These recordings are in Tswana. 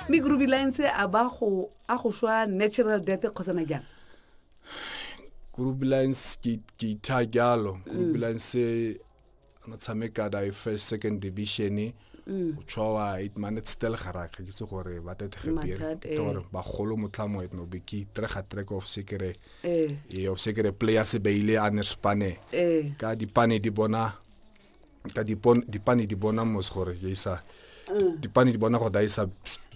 mme grubilance a ba go a go swa natural death kgosana jang grubilance ke ke itha jalo mm. grubilance na tshameka da e first second division e mm. o tshwa it man it's still garage ke se gore ba tete ge dire eh. gore ba golo motlhamo it no be ke tre ga trek of sekere eh. e of sekere player se beile a ne spane eh. ka dipane di bona ka dipane di bona mos gore ya isa mm. dipane di bona gore da isa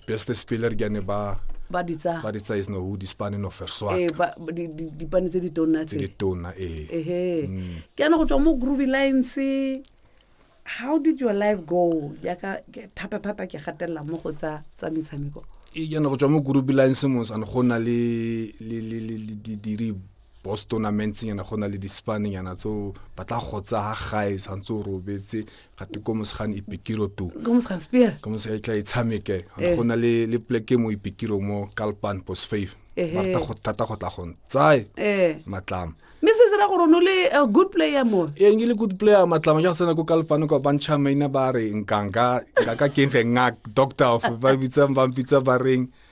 best speler ke ne ba ba di tsa ba di tsa is no who di spane no fair swat eh ba di di pane tse di tona tse di tona eh eh ke ana go tswa mo groovy lines how did your life go ya ka thata thata ke gatella mo go tsa tsa metshameko e yana go tswa mo groovy lines mo san go na le le le le di di boss tournamentsenyana go na le dispanenyana tseo ba tla go tsa gae tshwanetse o robetse gate ko mosegane ipikiro to ka mosega e tla e tshameke eh. go na le le pleke mo ipikiro mo kalpan post five ba rata go thata go tla gong tsae eh. matlama mme se se ra gore no le a good player mo ee nke le good player matlama ja go tsena ko kalfano kwa bantšha maina ba re nkanka ka keng ge ngak doctor of ba bitsang ba mpitsa ba reng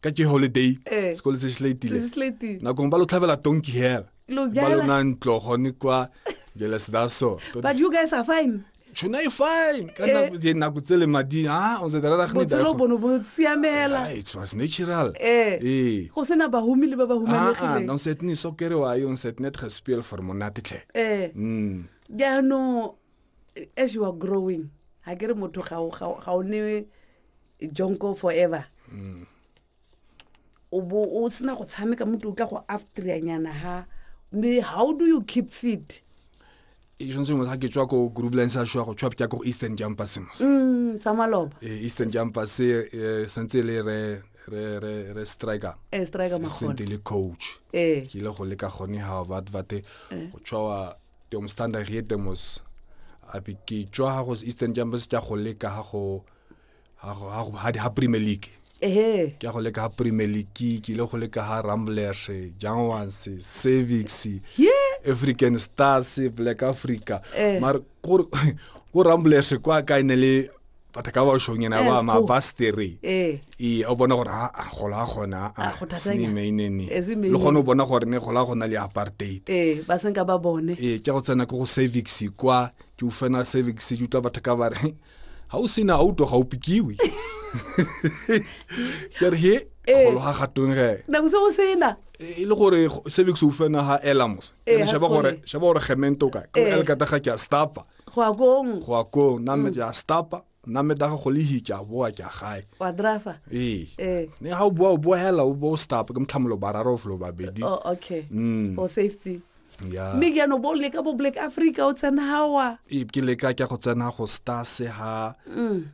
ka ke holiday eh. sekolo se slatile nakong ba lo tlhabela tonki hela ba lona ntlo gone kwa jealous that so but you guys are fine tshona e fine ka eh. nako je nako tsele madi ha o se dara ga ni dara bono bo siamela it was natural eh, eh. go sena ba humi le ba ba humanegile ah, ah, no set ni so kere wa yo set net respel for monate tle eh mm ya no as you are growing ha kere motho ga ga o ne jonko forever mm. o bo o sena go tshameka mo tla go aftrianyana ha mme how do you keep fit tshwanetse motho ga ke tswa ko groupline sa shwa go tshwa ke ko eastern campus mo mm tsa maloba eh, eastern campus eh, eh sentse le re re re re striker eh striker ma khona sentse le coach eh ke ile go leka gone ha ba bate eh. go tshwa tong standard yetemos a bi ke tswa go eastern campus tsa go leka ha go eh ga premier league ehe ke a go leka ga premier league ke ile go leka ga ramblers jangwans servix african stars black africa eh. mare ko ramblers kwa ka e ne le batho ka bašong ena ba mapastere ee eh. o bona gore aa gola gona aasnemainene ah, ah, le gone o bona gore ne gola gona le apartheid ee ba senka ba bone ee ke go tsena ke go servix kwa ke ufena servix ke utlwa batho ka bare ga o sena auto ga o pikiwe kere he eh. kgolo ga gatong ge nako se go sena e le gore service o fena ga elamos eh, shaba gore shaba gore gemento ka ka el kata ga ke a stapa go a kong go a kong na me mm. ja stapa na me daga go le hitja boa ke gae wa driver ee eh. ne ga o boa o boa hela o bo stapa ke mtlhamolo bararo flo babedi oh okay mm. for safety ya mme jaanong bo leka bo black africa o tsena gawa e- ke leka ke go tsena go stase ha Mm.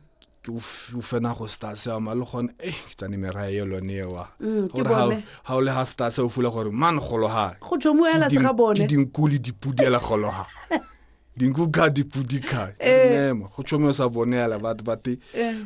ke o f- o fena go stase wa ma le gone e ke tsane merae yo lone ewa Mm, ke Gore ha o- bone. ha o le ha stase o fula gore man gologa go tswa mo ela se ga bone dinku le dipudi ela gologa dinku ka dipudi ka Ee. mema go tshomo sa bone ela batho bate Eh.